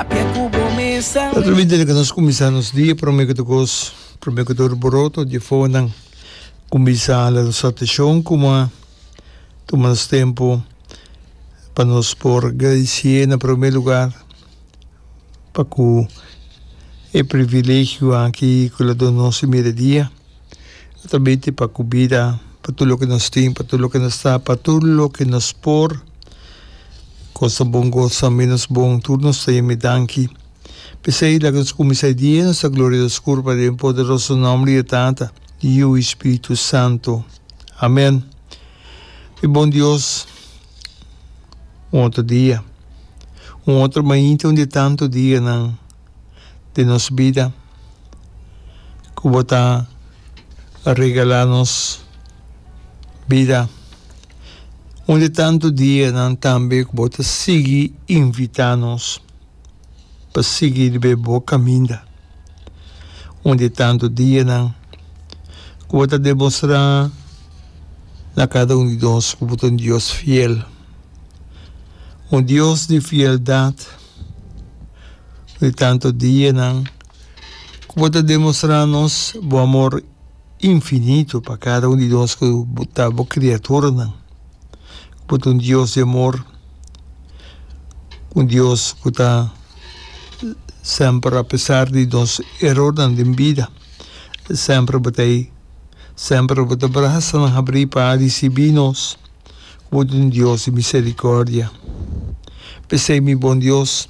Ta ta winter lika nos kuminsá nos dia promé ku tokos promé ku tur boroto di fonan kuminsá a la nos ateshon kuma tuma nos tempu pa nos por gradisié na promé lugar pa ku e privilegio aki ku la duna nos e mire dia. E ta binti pa cu bida, pa tur loke nos tin, pa tur loke nos ta, pa tur loke nos por. Cosa bon, cosa menos bon, tur nos ta yami danki. P'esey, laga nos cuminsa e dia nos ta gloria nos curpa den poderoso nomber di e Tata, di Yiu i Spiritu Santo. Amen. Mi bon Dios, un otro dia, un otro mainta un di e tanto dianan di nos bida ku bo ta regalá nos bida. Un di tantu dianan tambe ku bo ta sigui invitá nos pa sigui riba bo kaminda. Un di tantu dianan ku bo ta demostrá na kada un di nos ku bo ta un Dios fiel, un Dios di fieldat. di tanto dianan ku bo ta demostrá nos bo amor infinito pa kada un di nos ku ta bo kriaturanan. Ku bo ta un Dios di amor, un Dios ku ta semper apesar di nos erornan den bida, semper bo ta ei, semper bo ta brasa nan habrí pa risibí nos. bo ta un Dios di misericordia. P'esei, mi bon Dios,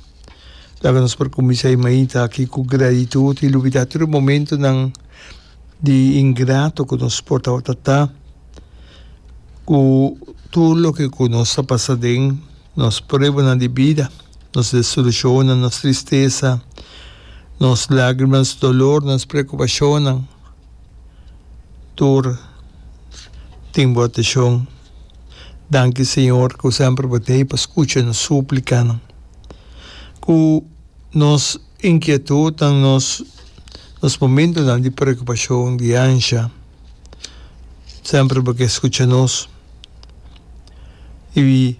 laga nos por cuminsa e mainta aki cu gratitud y lubida tur e momentonan di ingrato cu nos por tabata ta, cu tur loke cu nos a pasa den nos pruebanan di bida, nos desolucionnan, nos tristesa, nos lagrimanan, nos dolornan, nos preocupacionnan. tur tin bo ateshon. Danki Señor cu semper bo ta hei pa scucha nos suplicanan, cu nos inquietudnan, nos nos momentonan di preocupacion, di ansha, semper bo ke scucha nos y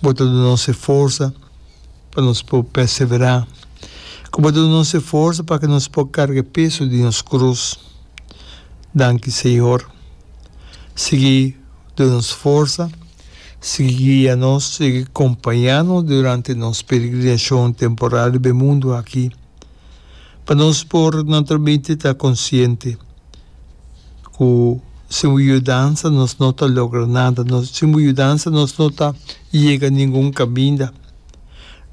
bo ta duna nos e forsa. pa nos por perseverá, ku bo duna nos e forsa pa ke nos por karga e peso di nos krus. Danki Señor. Sigui duna nos forsa, sigui guia nos, sigui kompañá nos durante nos peregrinashon temporal riba e mundu aki, pa nos por naturalmente ta konsiente ku sin bo yudansa nos no ta logra nada, sin bo yudansa nos no ta yega ningun kaminda.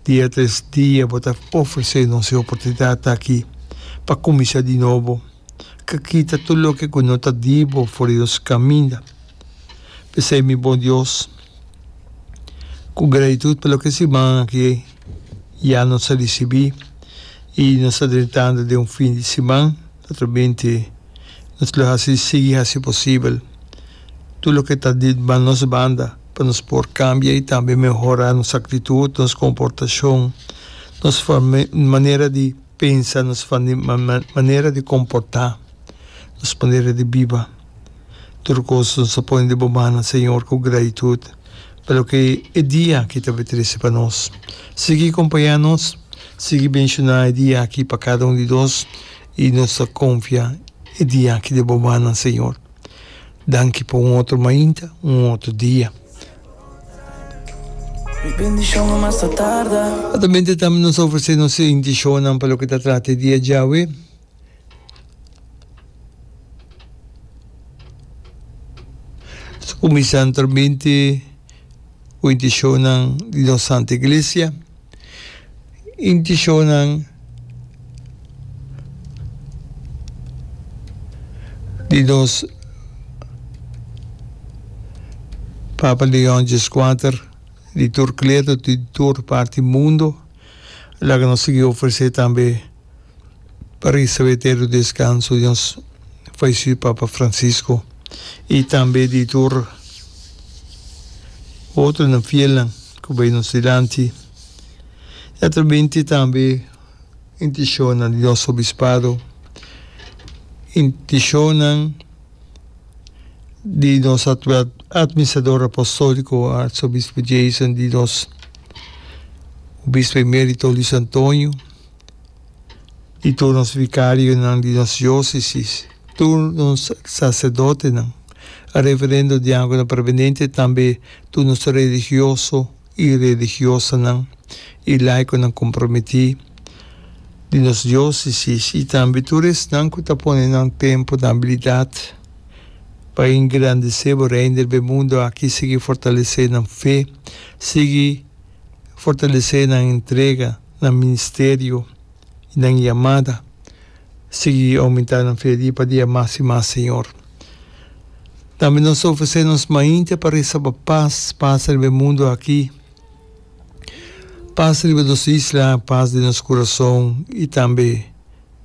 Dia tres dia bo ta ofresé nos e oportunidat aki pa kuminsá di nobo, ka kita tur loke ku no ta di bo for di nos kaminda. P'esei, mi Bon Dios, ku gratitut pa loke siman aki ya nos a risibí i nos ta drentando den un fin di siman, naturalmente nos lo hasi sigui hasi posibel tur loke ta di nos banda, pa nos por kambia i tambe mehorá nos aktitut, nos komportashon, nos manera di pensa, nos manera di komportá, nos manera di biba. Tur kos nos a pone di bo man, na Señor, ku gratitut pa loke e dia aki ta bai trese pa nos. Sigui kompañá nos, sigui benshoná e dia aki pa kada un di nos, i nos ta konfia e dia aki den bo mannan, Señor. Danki pa un otro mainta, un otro dia. Atamente tambe nos a ofrece nos intencionnan pa loke ta trata e dia djawe. Nos a cuminsa anteramente cu e intencionnan di nos Santa Iglesia. Inti shownan di nos Papa Leon Xvi di tur kledo, di tur parti mundo, laga nos sigui ofresé tambe. pa recibe eterno descanso di nos fallecid Papa Francisco y tambe di tur otronan fielnan cu bay nos dilanti y atrabente tambe intencionnan di nos Obispado, intencionnan di nos actual Administrador Apostolico Arzobispo Jason, di nos Obispo Emerito Luis Antonio. di tur nos vikarionan di nos diósesis, tur nos saserdotenan, e reverendo diákonan permanente i tambe tur nos religioso i religiosanan i laikonan komprometí di nos diósesis i tambe tur esnan ku ta pone nan tempu na abilidat pa engrandesé Bo Reino der be mundu aki sigui fortalesé nan fe, sigui fortalesé nan entrega. nan ministerio i nan yamada sigui oumentá nan fe dia pa dia mas i mas, Señor. Tambe nos ta ofresé nos mainte pa resa pa pas pasa riba e mundu aki, pas riba nos isla, pas den nos kurason i tambe.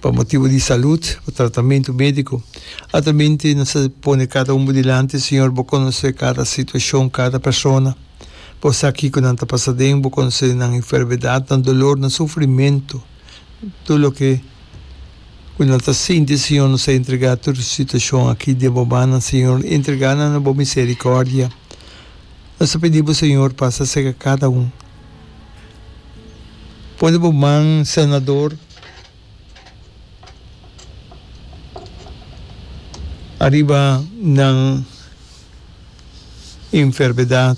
pa motibu di salut, pa tratamentu medico. Altamente nos ta pone cada un bo dilanti, Señor, bo conoce cada situacion, cada persona. Bo sa kico nan ta pasa den, bo conoce nan enfermedad, nan dolor, nan sufrimento, tur loke cu nan ta sinti, Señor, nos ta entrega tur e situacion aki den bo mannan, Señor, entrega nan na bo misericordia. Nos ta pidi bo, Señor, pasa cerca cada un. Pone bo man Senador ariba nan enfermedad,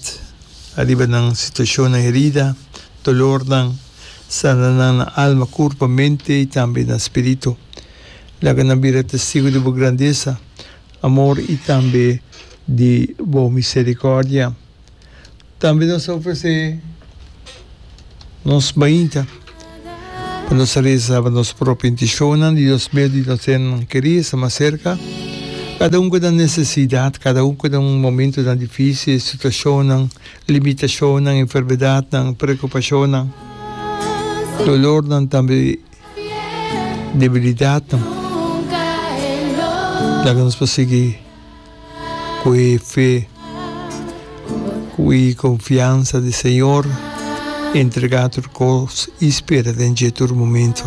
ariba nan situacionnan herida, dolornan, sana nan na alma, curpa, mente y tambe na spirito. Laga nan bira testigo di bo grandeza, amor y tambe di bo misericordia. Tambe nos ta ofresé nos mainta pa nos a resa pa nos propio intishonnan di nos medio di nos hennan kerí e sta mas serka. Kada un ku nan nesesidat, kada un ku nan momentunan difísil, situashonnan, limitashonnan, enfermedatnan, preokupashonnan, dolornan, tambe debilidatnan, laga nos por sigui. cu e fe, cu e confiansa den Señor, e entrega tur cos y spera den dje tur momento.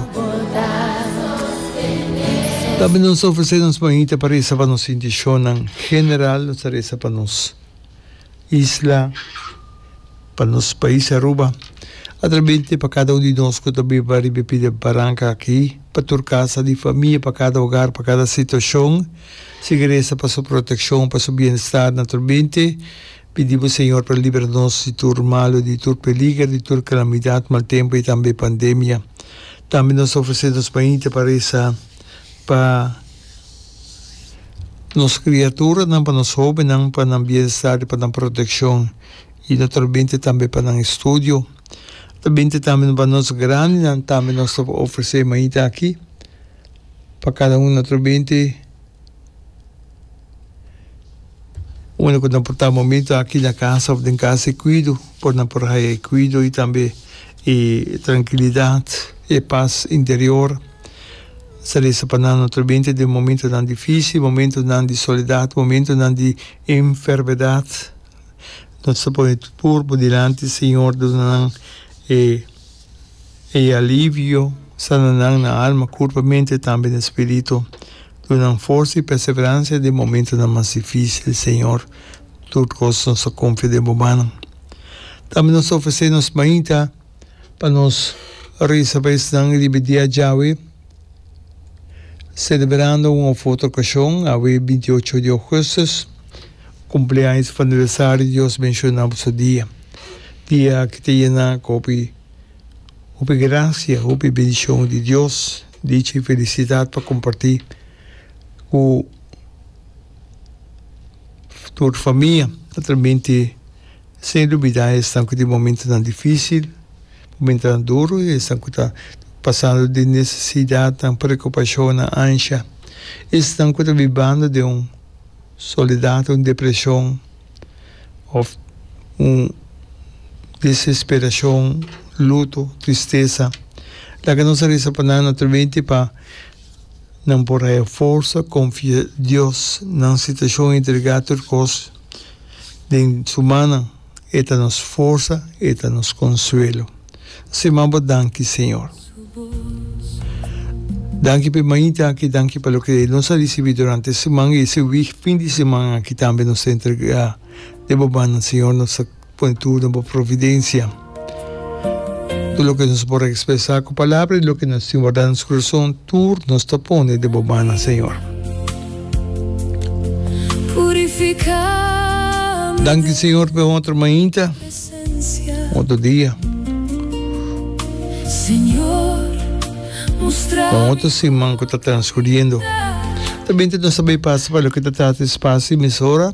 Tambe nos ta ofrece nos manita pa reza pa nos inticion nan. General nos ta reza pa nos isla. pa nos pais Aruba. Atrabente pa kada un di nos ku ta biba riba e pida baranka aki, pa tur kasa di famia, pa kada ogar, pa kada situashon, si gresa pa su protekshon, pa su bienestar. Naturalmente, pidi bo Señor pa libra nos di tur malu, di tur peliger, di tur kalamidat, mal tempu i tambe pandemia. Tambe nos ta ofresé nos mainta pa resa pa. Nos kriaturanan pa nos hóbennan pa nan bienestar i pa nan protekshon i no ta lo binti tambe pa nan estudio. No ta binti tambe pa nos grandinan tambe nos ta por ofresé mainta akí pa kada un otro binti unda ku nan por ta momentu akí na kasa òf den kasa e kuido por nan por haña e kuido i tambe e trankilidat, e pas interior. Sa lesa pa nan otro binte den momentonan difísil, momentonan di soledat, momentonan di enfermedat. Nos ta pone tur cuerpo dilanti, Señor, duna nan e e alivio, sana nan na alma, curpa, mente, tambe na spirito. Duna nan forza y perseverancia den momentonan mas difícil, Señor. Tur cos nos ta confia den bo manan. Tambe nos ta ofrece nos mainta. pa nos risa pa esnan riba dia djawe, selebrando un of otro okashon, awe binti i ocho di ougustus, kumpleaños of aniversario di Dios menshoná pa su dia, dia ki ta yená ku hopi, hopi grasia, hopi bendishon di Dios, dicha i felisidat pa kompartí ku tur famia, naturalmente. Sin dubida esnan ku tin momentunan difísil, momentunan duru, esnan ku ta pasando den nesesidatnan, preokupashonnan, ansha, esnan ku ta bibando den un soledat, un depreshon òf un desesperashon, luto, tristesa. Laga nos a resa pa nan naturalmente pa nan por haya forsa, konfia Dios, nan situashon, entregá tur kos. Den su mannan, e ta nos forsa, e ta nos konsuelo. Así m'a bo danki, Señor. Danki pa e mainta aki, danki pa loke nos a risibí durante e siman i ese wik fin di siman aki tambe nos ta entregá den bo mannan, Señor. Nos ta Pone tur na bo providencia. Tur loke nos por expresa cu palabra y loke nos tin warda na nos corazon tur nos ta pone den bo mannan Señor. Danki Señor pa e otro mainta, otro dia, pa otro siman cu ta transcuriendo. Ta bini nos ta bay pasa pa loke ta trata e spacio y mesora.